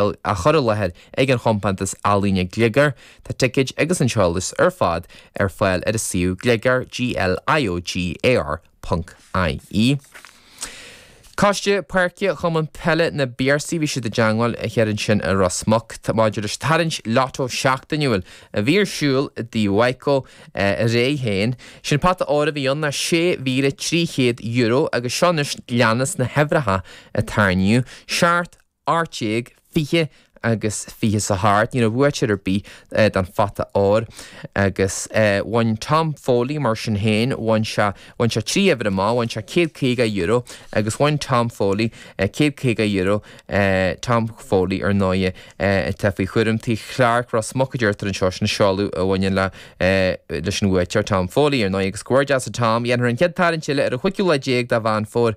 á chur i láthair ag an chompántas ealaíne Gliogar, tá ticéid agus an t-eolas ar fad ar fáil ar a suíomh Gliogar, G-L-I-O-G-A-R, ponc, I-E. Coiste Páirce Chumann Peile na bPiarsach, bhí siad i dteangmháil thiar ansin i Ros Muc maidir leis an tarraingt Lotto seachtainiúil a bhí ar siúl i dTigh Mhaidhcó aréir féin. Sin pota óir a bhí ann, €6,300 agus seo anois leanas na huimhreacha a tarraingíodh, seacht, ocht déag, fiche agus fiche is a hocht, ní raibh buaiteoir ar bith don Phota Óir agus bhain Tom Foley, mar sin féin, bhain sé, bhain sé trí uimhir amach, bhain sé céad caoga euro agus bhain Tom Foley céad caoga euro, Tom Foley, ar ndóigh, atá faoi chúram tí Chlarke, Ros Muc a deirtear anseo, sin an seoladh a bhaineann le, leis an bhuaiteoir, Tom Foley, ar ndóigh, agus comhghairdeas a Tom, dhéanfar an chéad tarraingt eile ar an chúigiú lá déag de Mheán Fómhair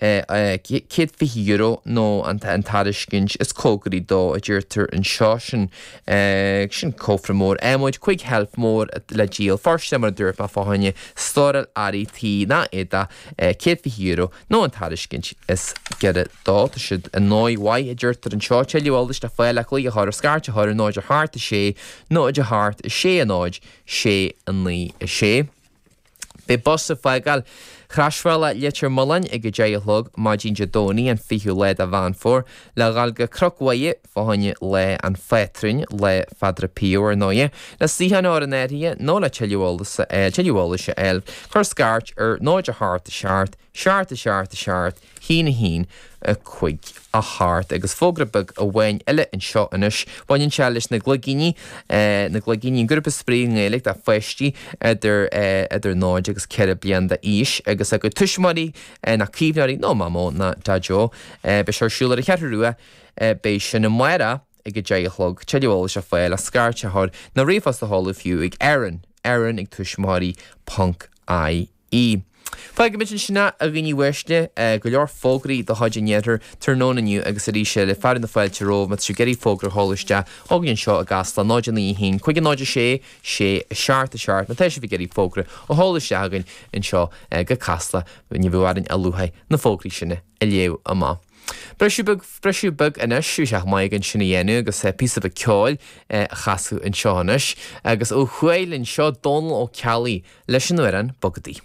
céad fiche euro nó an tairiscint is cóngaraí dó, a deirtear anseo. Sin, sin cófra mór adhmaid, cúig sheilf mór le díol, fóirsteanach mar a dúirt mé fá choinne stóráil earraí tí ná éadach, céad fiche euro nó an tairiscint is giorra dó. Tá siad i ndóigh mhaith, a deirtear anseo, tuilleadh eolais le fáil, le glaoch a chur, scairt a chur ar náid a hocht, a sé, náid a hocht, a sé a náid, sé a naoi, a sé. Beidh bus ag fágáil Chrosbhealach Leitir Mealláin ag a deich a chlog maidin Dé Domhnaigh an 20ú lá de Mheán Fómhair le dhul go Cnoc Mhuire fá choinne Lá an Phátrúin, Lá Phadre Pio ar ndóighe, le suíochán a chur in áirithe nó le tuilleadh eolais a fháil, cuir scairt ar 0 8 7 7 7 7! Haon a haon a cúig a hocht agus fógra beag amháin eile anseo anois. Baineann sé leis na gligíní. Na gligíní, an grúpa spraoi i nGaeilge do pháistí idir 0 agus 4 bliain d'aois agus a gcuid tuismitheoirí, nó caomhnóirí nó Mamó ná Daideo. Beidh sé ar siúl ar an Cheathrú Rua. Beidh sin amárach ag a deich a chlog. Tuilleadh eolais le fáil ach scairt a chur nó ríomhphost a sheoladh fiú ag Erin, Erin ag tuismitheoirí ponc ie. ii, Fágfaidh muid ansin é, a dhaoine uaisle, go leor fógraí de chuid an iarthair tráthnóna inniu agus arís eile fearadh na fáilte romhaibh má tá sibh ag iarraidh fógra a sheoladh isteach chugainn anseo i gCasla, 0 9 1 5 0 6 6 7 7, má tá sibh ag iarraidh fógra a sheoladh isteach chugainn anseo go Casla, ní bheadh orainn ach lúcháir na fógraí sin a. a léamh amach. Briseadh beag, briseadh beag anois, bheadh sé chomh maith againn sin a dhéanamh agus píosa beag ceoil a chasadh anseo anois agus ó Chualann seo Dónal Ó Ceallaigh leis an amhrán Bogadaí.